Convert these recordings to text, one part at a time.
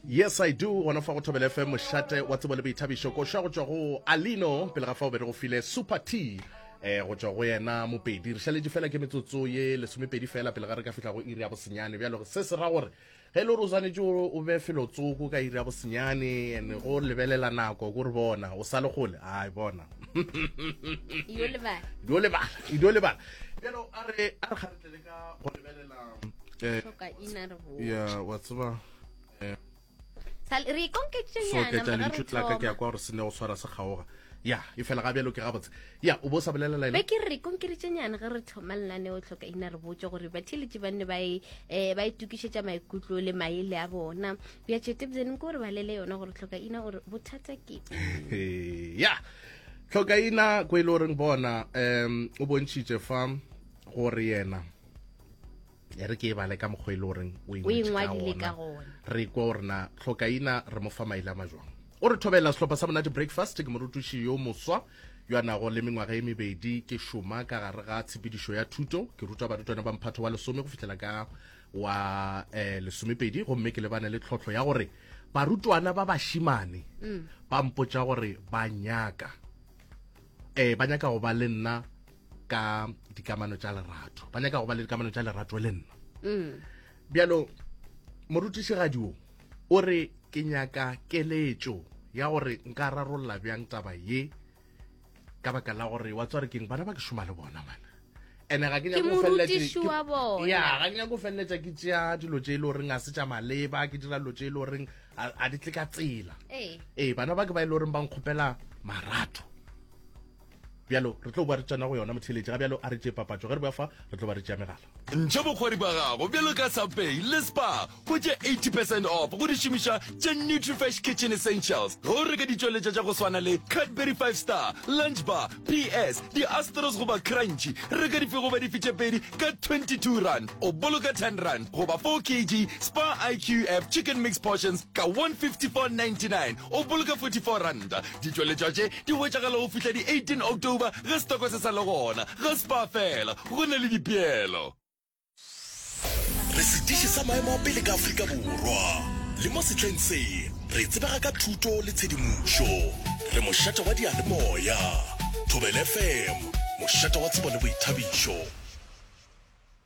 yes i do gona fa go thobele fm mošate wa tsebo le boithabišo koša go tšwa go alino pele ga fa o be re go file super t eh go tšwa go yena mopedi re šaletše fela ke metsotso ye lesomepedi fela pele ga re ka fihla go iri ya bosenyane bjalo se se ra gore ge e le gore o swanetše o be felotsoko ka iri ya bosenyane and go lebelela nako kore bona o sa le gole ai bona dio lebala dio lebala dio lebala le ka go lebelela eh, ya wa tseba eh, re ikonketšenyana lentšu la ka ke ya kwa gore se ne go tshwara se kgaoga ya e fela ga bjalo ke gabotse ya o bo sa bolelela be ke re konkeretšenyane ge re thoma lenane o tlhoka ina re botse gore batheletše ba nne ba e, eh, e tokišetša maikutlo le maele a bona bja tšetebzeneng ke gore ba lele yona gore tlhoka ina gore bothata ke ya tlhoka ina ko e le goreng bona um o bontšhitše fa gore yena e re ke e bale ka mokgwa e le goreng o ingwadile ka gona re kwa gore na tlhokaina re mo fa maele a majwang o re thobela sehlopha sa monate breakfast ke morutuši yo moswa yo a nago le mengwaga e mebedi ke šoma ka gare ga tshepedišo ya thuto ke ruta barutwana ba mphatho wa lesome go fitlhela ka wa um lesomepedi gomme ke lebane le tlhotlho ya gore barutwana ba bašimane mm. ba mpotša gore ba nyaka um ba nyaka go ba le nna ka dikamano tša lerato ba nyaka go ba le dikamano tša lerato le nna mm. bjalo morutišigadi o o re ke nyaka keletšo ya gore nka rarolola bjang taba ye ka baka la gore wa tswa re keng bana ba ke šoma le bona mana ene ga ke nyako feleletsa ke tšea dilo tse e le goreng a se tša maleba ke dira dilo tse e le goreng a di tle ka tsela ee bana ba ke ba e le goreng ba nkgopela marato bjalo re tlo boa re tsena go yona motheletši ga bjalo a re tšee papatšo ge re boa fa re tlo ba re tšea megala ntšha bokgwadi ba gago bjalo ka subpay le spa go tše 80 percent off go di šomiša tše nutrifresh kitchen essentials ge o reka ditšweletša tša go swana le cadbury 5 star lunch bar ps di-astros goba crunchi reka dife goba dife tše pedi ka 22 rand o boloka 10 rand goba 4 kg spa iqf chicken mix portions ka 154.99 o boloka 44 rand ditšweletša tše Di hwetšagala go fihla di 18 October ge setoko se sa le gona. Ge Spar fela, go na le dipeelo. Re sediši sa maemo a pele ka Afrika Borwa, le mo sehleng se re tsebega ka thuto le tshedimošo. Re mošate wa diyalemoya, Thobela FM, mošate wa tsebo le boithabišo.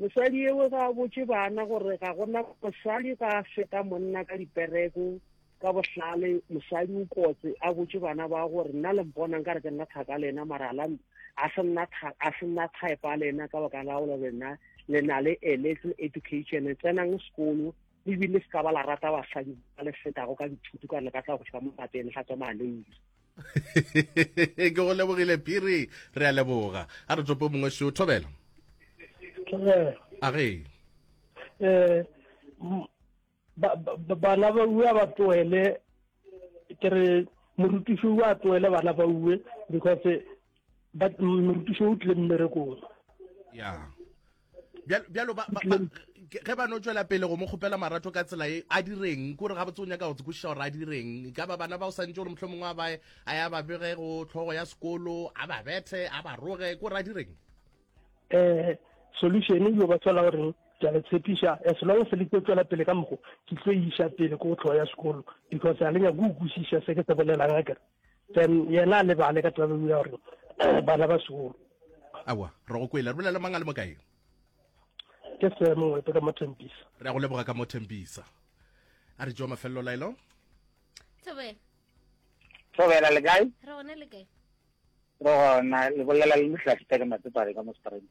Mosadi yeo ga a botše bana gore ga go na mosadi ga a feta monna ka dipereko, ka bohlale mosadi o kotse a botše bana ba gore nna le mpona nka re ke nna thaka le ena mara la a se nna a se nna type le ena ka baka la gore lena le na le a little education tsenang sekolo le bile se ka ba la rata basadi ba le fetago ka dithuto ka le ka tla go tšwa mo lapeng ga tswa maleiri ke go lebogile phiri re a leboga a re topo mongwe seo thobela a ge eh, bana ba uwe ba tloele ke re morutiši o a tloele bana ba uwe because but morutiši o tlile mmerekong ya bjalo ge ba no tšwela pele go mo kgopela marato ka tsela e a direng kore ga botse o nyaka go tsekwešiša gore a direng e ka ba bana ba o santse gore motlho mongwe a bae a ya ba bege go tlhogo ya sekolo a ba bethe a ba roge kore a direng um solution e yo ba tswela goreng ke a le tshepiša as long se le tlo tswela pele ka mogo ke tlo iša pele ko go tlhogo ya sekolo because a le nyako o kwešiša se ke se bolelang a kere Then yena a lebale ka taba ya gore bana ba sekolo. Awa, re go kwele. Re bolela mang a le mo kae? Ke se mongwe ka mo Thembisa. Re a go leboga ka mo Thembisa. A re jo mafelelo laelo. Thobela. Thobela le kae? Re gone le kae? Re gona le bolela le Mohlahli Teka Matsepale ka mo Springs.